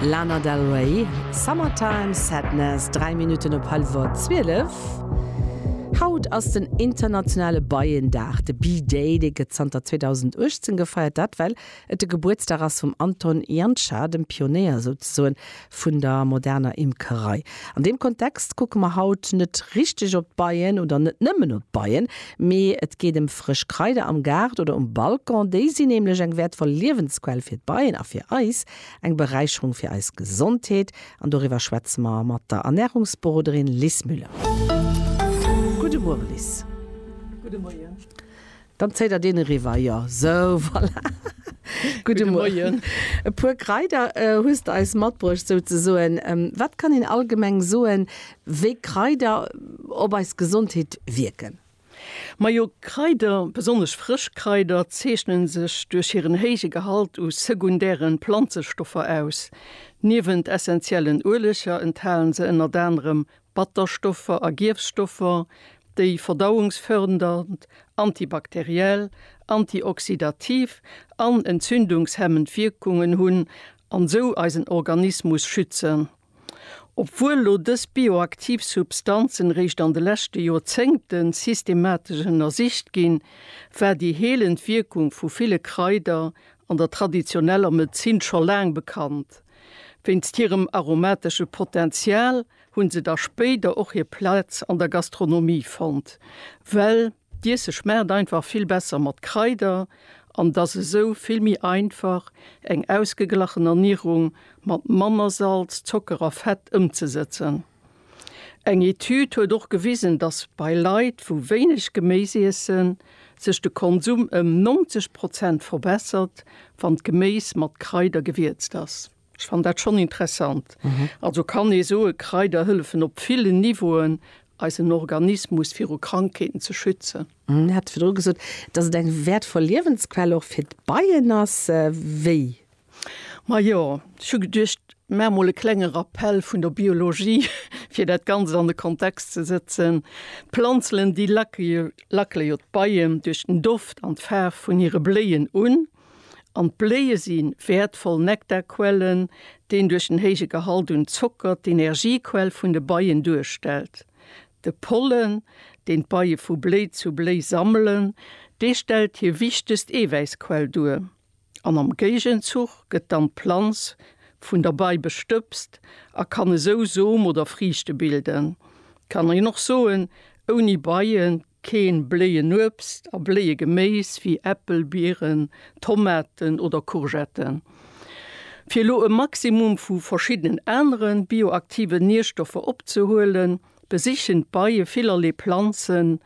Lana Del Rey, Summertime Sadness, 3 Minutten op hallwer 12. Haut ass den internationale Beiendag, de Bee-Day, dee gëtt zanter 2018 gefeiert. Dat well et de Gebuertsdag ass vum Anton Janša, dem Pionéier souzesoen. vun der moderner Imkerei. An deem Kontext kucke mer haut net richteg op d'Beien oder net nëmmen op d'Beien, mee et geet ëm frësch Kraider am Gaart oder um Balcon. Déi sinn nämlech eng wäertvoll Liewensquell fir d'Beien a fir eis eng Beräicherung fir eis Gesondheet. An doriwwer schwätze mer mat der Ernährungsberoderin Lis Müller. Gudde Muere Lis. Gudde Moien. Dann zéit der deen eriwwer, jo. Sou, voilà. Gudde Moien. E puer Kraider hues de eis matbruecht, souzesoen. Wat kann een allgemeng soen, wéi Kraider op eis Gesondheet wierken? Majo, Kraider, besonnesch frësch Kraider, zeechne sech duerch hiren héije Gehalt u sekundäre Planzestoffer aus. Niewent essenziellen Ueleger enthale se ënnert anerem Batterstoffer a Gierfstoffer, déi verdauungsfördernd, antibakteriell, antioxydativ an entzündungshemmend Wierkungen hunn an sou eisen Organismus schützen. Obwuel lo dës bioaktiv Substanzen réischt an de leschte Joerzéngten systematesch ënnersicht ginn, war déi heelend Wierkung vu ville Kraider an der traditioneller Medezin scho laang bekannt. Wéinst hirem aromatesche Potential hunn se da spéider och hir Plaz an der Gastronomie fonnt, well d'Iesse schmaacht einfach vill besser mat Kraider an et ass esou vill méi einfach, eng ausgeglachen Ernierung mat manner Salz, Zocker a Fett ëmzesëtzen. Eng Etüd huet och gewisen, dass bei Leit, wou wéineg Geméis iessen, sech de Konsum ëm 90 Prozent verbessert, wann d'Geméis mat Kraider gewierzt ass. Ech fannen dat schonn interessant. Also kann ee soen, Kraider hëllefen op villen Niveauen, eisen Organismus viru Krankheeten ze schützen. Dir hat virdru gesot, dass et eng wäertvoll Liewensquell och fir d'Beien ass. Wéi? Majo, ech hu geduecht, maache mol e klenge Rappell vun der Biologie, fir dat Ganzt an de Kontext ze sëtzen. D'Planzen, déi lacke jo d'Beien duerch den Doft an d'Faarf vun hire Bléien un. An d'Bléie si wäertvoll Nektarquellen, deen duerch den héije Gehalt un Zocker d'Energiequell vun de Beien duerstellt. De Pollen, deen d'Beie vu Bléi zu Bléi sammelen, dee stellt hir wichtegst Eewäissquell duer. An am Géigenzuch gëtt dann d'Planz vun der Bei bestëbst a kann esou Som oder Friichte bilden. Kann een och soen, ouni Beien Keen Bléienuebst a Bléiegeméis wéi Äppel, Bieren, Tomaten oder Courgetten. Fir elo e Maximum vu verschiddenen aneren bioaktiven Nierstoffer opzehuelen, besichen d'Beie villerlee Planzen.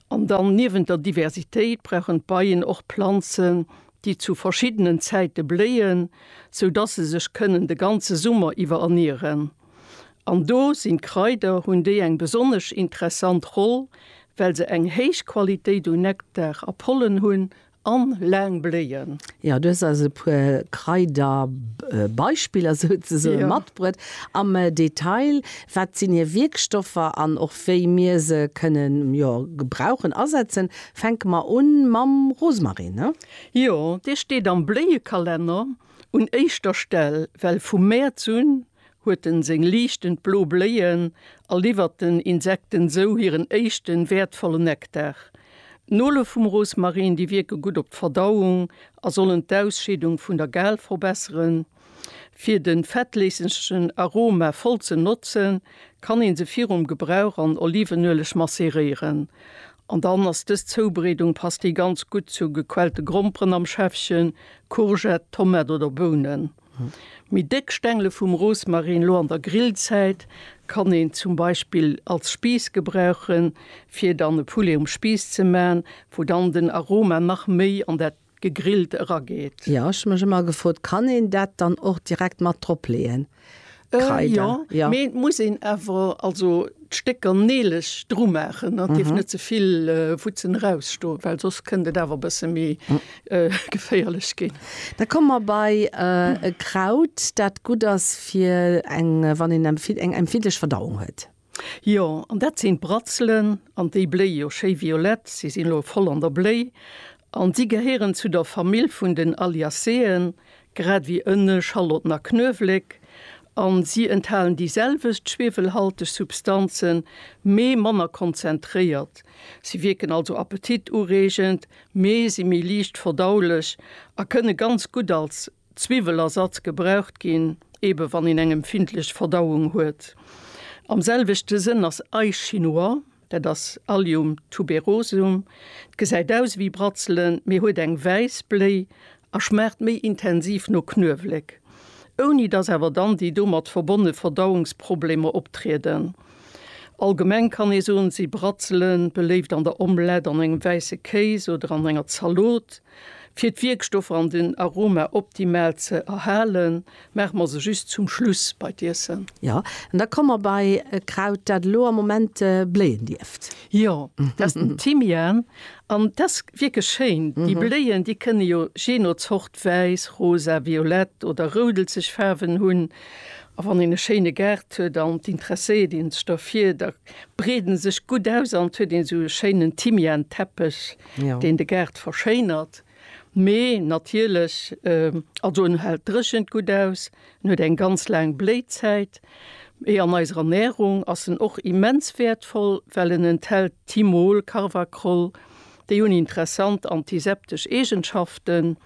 An dann, niewent der Diversitéit, brauchen d'Beien och Planzen, déi zu verschiddenen Zäite bléien, sou dass se sech kënnen de ganze Summer iwwer ernieren. An do sinn d'Kraider, hunn déi eng besonnesch interessant Roll, well se eng héich Qualitéit un Nektar a Pollen hunn an laang bléien. Jo, du hues eis e puer Kraiderbeispiller souzesoen matbruet. Am Detail, wat sinn hir Wierkstoffer an och wéi mir se kënnen, jo, gebrauchen, asetzen? Fänke mer un mam Rosmarin, ne? Jo, dee steet am Bléiekalenner. Un éischter Stell, well vu Mäerz un huet en seng liichtend blo Bléien a liwwert den Insekten sou hiren éischten wäertvollen Nektar. D'Nole vum Rosmarin, déi wierke gutt op d'Verdauung a sollen d'Ausscheedung vun der Gall verbesseren. Fir de fettléissegen Aroma voll ze notzen, kann een se virum Gebrauch an Olivenueleg masseréieren. An dann ass dës Zoubereedung passt déi ganz gutt zu gequellte Gromperen am Schäffchen, Courgette, Tomate oder Bounen. Méi déck Stengele vum Rosmarin lo an der Grillzäit kann een zum Beispill als Spiiss gebrauchen fir dann e Poulet um Spiiss ze maan wou dann den Aroma nach méi an dat gegrillt erageet. Jo, ech hun mech emmer gefrot, kann een dat dann och direkt mat drop leeën? Kreider, äh, jo. Mee et muss een awer also d'Stécker neeleg dru maachen an et dierf net ze vill Wutzen erausstoen, well soss kënnt et awer e bësse méi geféierlech ginn. Da komme mer bei e Kraut, dat gutt ass fir eng, wann een eng empfindlech Verdauung huet. Jo, an dat sinn d'Bratzelen, an déi bléie jo schéi violett, si sinn elo voll an der Bléi, an si gehéieren zu der Famill vun den Alliaceen, grad ewéi Ënne, Schalotten a Knuewléck, an si enthalen déi selwecht schwiewelhalteg Substanzen, mee manner konzentréiert. Si wierken also appetitureegend, mee si méi liicht verdaulech a kënne ganz gutt als. Zwiwwelersatz gebraucht ginn, eebe wann een eng empfindlech Verdauung huet. Am selwechte Sënn ass Ail chinois, dat ass Allium tuberosum. D'gesäit aus ewéi Bratzelen, mee huet eng wäiss Bléi a schmaacht méi intensiv no Knuewléck, ouni dass awer dann déi domat verbonne Verdauungsproblemer optrieden. Allgemeng kann ee soen, si Bratzele beléift an der Omlette, an engem wäisse Kéis oder an enger Zalot. Fir d'Wierkstoffer an den Aroma optimal ze erhalen, maache mer se just zum Schluss bei d'Iessen. Jo, an da komme mer bei e Kraut, dat elo am Moment bléien dierft. Jo, dat ass den Thymian. An dat ass wierklech schéin. Déi Bléien, déi kënne jo jee no Zort wäiss, rosa, violett oder roudelzeg Faarwen hunn. A wann een e schéine Gaart huet an d'intresséiert ee sech derfir, da breeden sech gutt aus an et huet een esou e schéinen Thymianteppech. deen de Gaart verschéinert, mee natierlech, also en hält d'Dréchent gutt aus, en huet eng ganz laang Bléizäit, mee an eiser Ernärung ass en och immens wäertvoll, well en enthält Thymol, Carvacrol, déi hunn interessant antiseptesch Eegenschaften.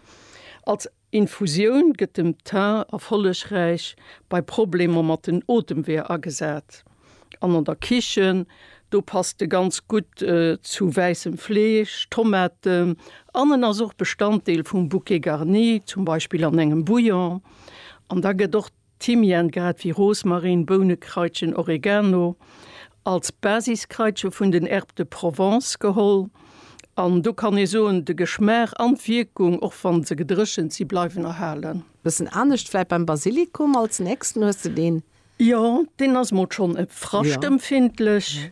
Als Infusioun gëtt dem Thym erfollegräich bei Problemer mat den Otemweeër agesat an an der Kichen. Do passt e ganz gutt zu wäissem Fleesch, Tomaten an en ass och Bestanddeel vum Bouquet garni, zum Beispill an engem Bouillon. An da gëtt och. Thymian, grad wéi Rosmarin, Bounekraitchen, Oregano, als Basiskraitche vun den Herbes de Provence geholl. An do kann ee soen, de Geschmaach an d'Wierkung, och wa se gedréchent si, bleiwen erhalen. Bëssen anescht vläit beim Basilikum, als nächsten hues de deen. Jo, deen ass mol schonn e fraschtempfindlech.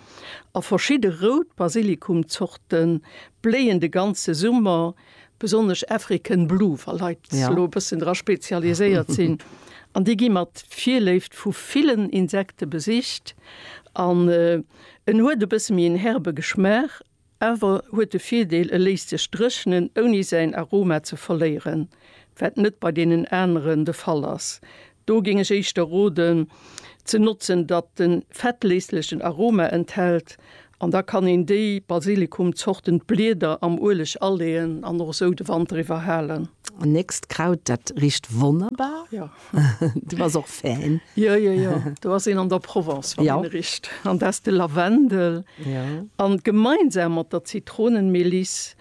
A verschidde rout Basilikumzorte bléien de ganze Summer, besonnesch African Blue, wa Leit sech elo e bëssen dra spezialiséiert sinn. An déi gi mat Virléift vu villen Insekte besicht. An en huet e bësse méi en herbe Geschmaach Awer huet de Virdeel, e léisst sech dréchnen ouni säin Aroma ze verléieren, wat net bei deenen aneren de Fall ass. Do géing ech éischter roden ze notzen, datt de fettléslechen Aroma enthält an da kann een déi Basilikumzorten, d'Blieder am Ueleg aleeën an och esou de Wanter iwwer halen. Nächst Kraut, dat richt wonnerbar. Du bass och Fan? Jo, jo, jo. Do ass een an der Provence, wann een richt. An da ass de Lavendel. An gemeinsam mat der Zitronenmeliss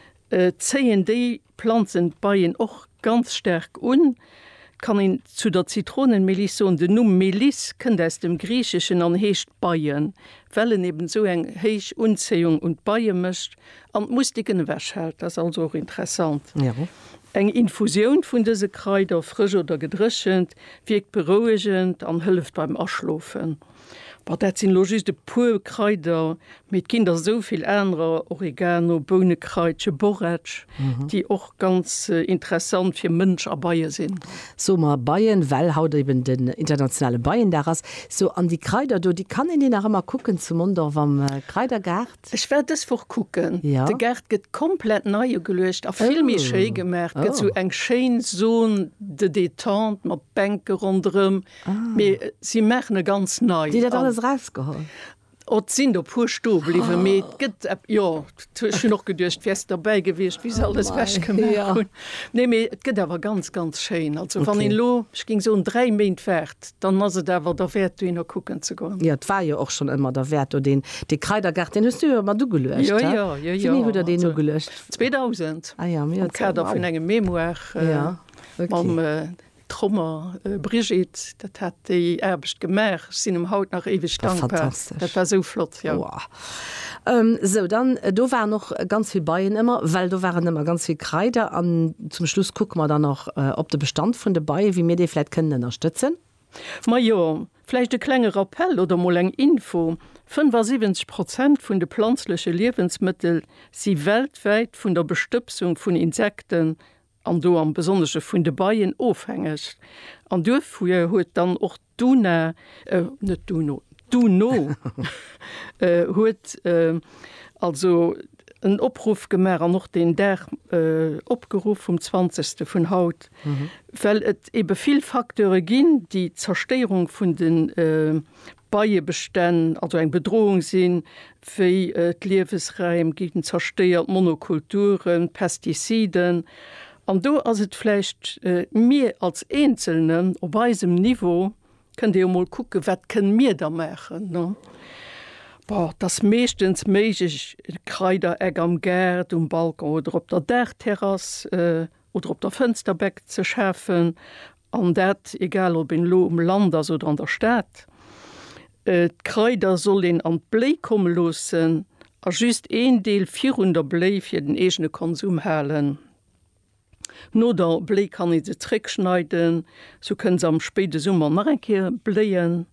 zéien déi Planzen d'Beien och ganz staark un. Et kann een zu der Zitronenmeliss soen, den Numm Meliss kënnt aus dem Griicheschen an heescht Beien, well en eben esou eng héich Unzéiung un d'Beie mécht. An d'Mustiken ewechhält, dat ass also och interessant. Eng Infusioun vun dëse Kraider, frësch oder gedréchent, wierkt berouegend an hëlleft beim Aschlofen. Bon, dat sinn elo just e puer Kraider, mee et ginn der esou vill anerer, Oregano, Bounekraitche, Borretsch, déi och ganz interessant fir Mënsch a Beie sinn. Soe mer Beien, well haut eben den internationale Beiendag ass. Sou, an déi Kraider do, déi kann een déi nach ëmmer kucken zu Mondorf am Kraidergaart? Ech war dës Woch kucken, de Gaart gëtt komplett nei ugeluecht a vill méi schéi gemaach. Gëtt sou eng schéin Zone de détente mat Bänke ronderëm, mee si maachen e ganz nei. Déi dat alles erausgeholl? Et sinn der puer sto bliwwen, mee et gëtt, jo, ech hunn och geduecht, wäers de derbäi gewiescht, wéi se alles wech gemaach hunn. Nee, mee et gëtt awer ganz, ganz schéin. Also wann een elo, ech géing soen, dräi Méint waart, Dann ass et awer derwäert dohinner kucken ze goen. Jo, et war jo och schonn ëmmer derwäert do. Deen dee Kraidergaart, deen hues du jo mat ugeluecht, he? Jo, jo, jo, jo, also 2000 am Kader vun engem Mémoire mam Trommer Brigitte, dat hat déi Aarbecht gemaach. Ech sinn em haut nach éiweg dankbar, dat war esou flott, jo. Sou, dann, do waren och ganz vill Beien ëmmer, well do waren ëmmer ganz vill Kraider. An zum Schluss kucke mer dann och op de Bestand vun de Beien, wéi mir dee vläicht kënnen ënnerstëtzen. Majo, vläicht e klenge Rappell oder mol eng Info, 75 Prozent vun de planzleche Liewensmëttel si weltwäit vun der Bestëbsung vun Insekten, an do am Besonnesche vun de Beien, ofhängeg. An duerfir huet dann och. D'UNA, net d'UNO, d'UNO huet also en Opruff gemaach an och deen Dag opgeruff, vum 20. vun haut, well et ebe vill Facteure ginn, déi d'Zerstéierung vun de Beiebestänn, also eng Bedrohung sinn, wéi d'Liewesräim ginn zerstéiert, Monokulturen, Pestiziden, an do ass et vläicht, mir als Eenzelnen op eisem Niveau, kënnt ee jo mol kucken, wat kënne mir da maachen, ne? Bon, et ass meeschtens méiglech, e Kraidereck am Gaart, um Balcon oder op der Daachterrass oder op der Fënsterbeck ze schafen, An dat egal ob een elo um Land ass oder an der Stad. D'Kraider soll een an d'Bléi komme loossen a just een Deel virun der Bléi fir den eegene Konsum halen. No der Bléi kann ee se zréck schneiden, sou kënne se am spéide Summer nach eng Kéier bléien.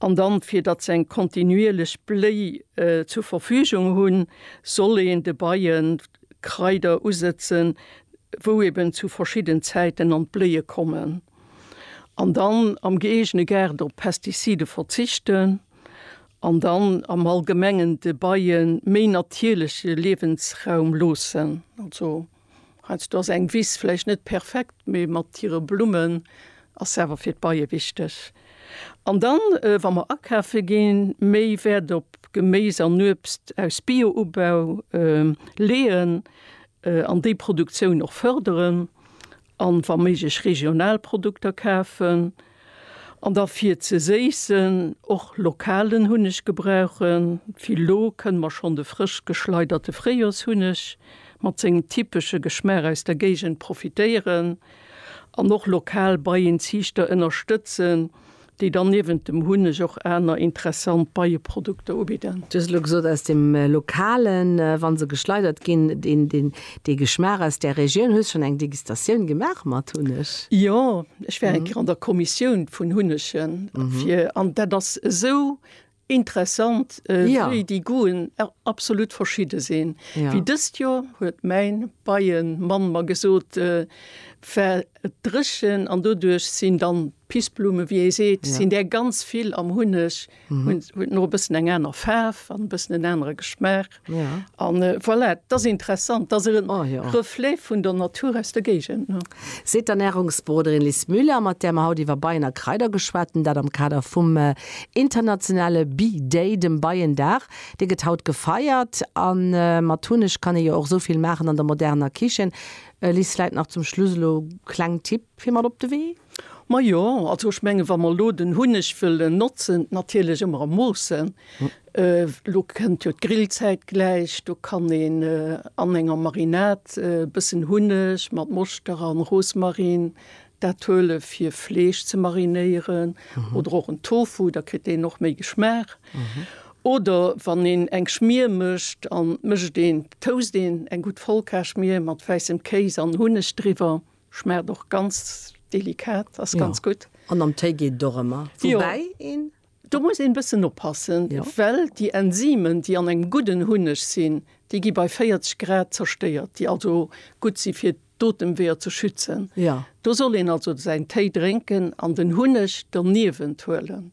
An dann, fir datt se eng kontinuierlech Bléi zur Verfügung hunn, soll een de Beien Kraider usëtzen, wou eben zu verschidden Zäiten an d'Bléie kommen. An dann am gëeegene Gaart op Pestizide verzichten an dann am Allgemengen de Beie méi natierleche Liewensraum loossen. Also heiansdo ass eng Wiss vläicht net perfekt, mee mat hire Blummen ass se awer fir d'Beie wichteg. An dann, wa mer akafe ginn, méi Wäert op Geméis an Uebst aus Bio-Ubau leeën an déi Produktioun och fërderen an wa méiglech regional Produkter kafen. An da fir ze séissen och lokalen Hunneg gebrauchen, wéi lo kënne mer schonn de frësch geschleiderte Fréijoershunneg mat sengem typesche Geschmaach aus der Géigend profitéieren. An och lokal Beienziichter ënnerstëtzen, déi dann niewent dem Hunneg och aner interessant Beieprodukter ubidden. Du hues elo gesot aus dem Lokalen, wa se geschleidert ginn, dee Geschmaach aus där Regioun. Hues schonn eng Degustatioun gemaach mat Hunneg? Jo, ech war eng Kéier an der Kommissioun vun Hunnege fir, an dat ass esou, Interessant wéi déi Goûten absolut verschidde sinn. Wéi dëst Joer huet mäin Beiemann mer gesot, war et dréchen an doduerch sinn dann d'Pissblumen, wéi ee seet, sinn där ganz vill am Hunneg, hunn e bëssen eng aner Faarf an e bëssen en anere Geschmaach. Ja. An voilà, et ass interessant, et ass e Reflet vun der Natur aus der Géigend. Seet d'Ernärungsberoderin Liz Müller, mat där mer haut iwwer Beien a Kraider geschwat hunn, dat am Kader vum internationale Bee Day, dem Beiendag. Dee gëtt haut gefeiert a mat Hunneg kann ee jo och esou vill maachen an der moderner Kichen. Liz, vläit nach zum Schluss elo kleng Tipp fir mat op de Wee? Majo, also ech mengen, wa mer elo den Hunneg wëllen notzen, natierlech ëmmer a Moossen, elo kënnt jo d'Grillzäit gläich, do kann een an enger Marinad e bëssen Hunneg mat Moschter a Rosmarin, dat huele fir Fleesch ze marinéieren oder och en Tofu, da kritt deen och méi Geschmaach. Oder wann een eng Schmier mécht an d'mécht een, toast een eng gutt Vollkarschmier mat wäissem Kéis an Hunneg driwwer. Schmaacht och ganz delikat, ass ganz gutt. An am Téi geet et och ëmmer. Woubäi een. Do muss een e bëssen oppassen, well déi Enzymen, déi an engem gudden Hunneg sinn, déi gi bei 40 Grad zerstéiert, déi also gutt si fir d'Otemweeër ze schützen. Do soll een also säin Téi drénken an den Hunneg doniewent huelen.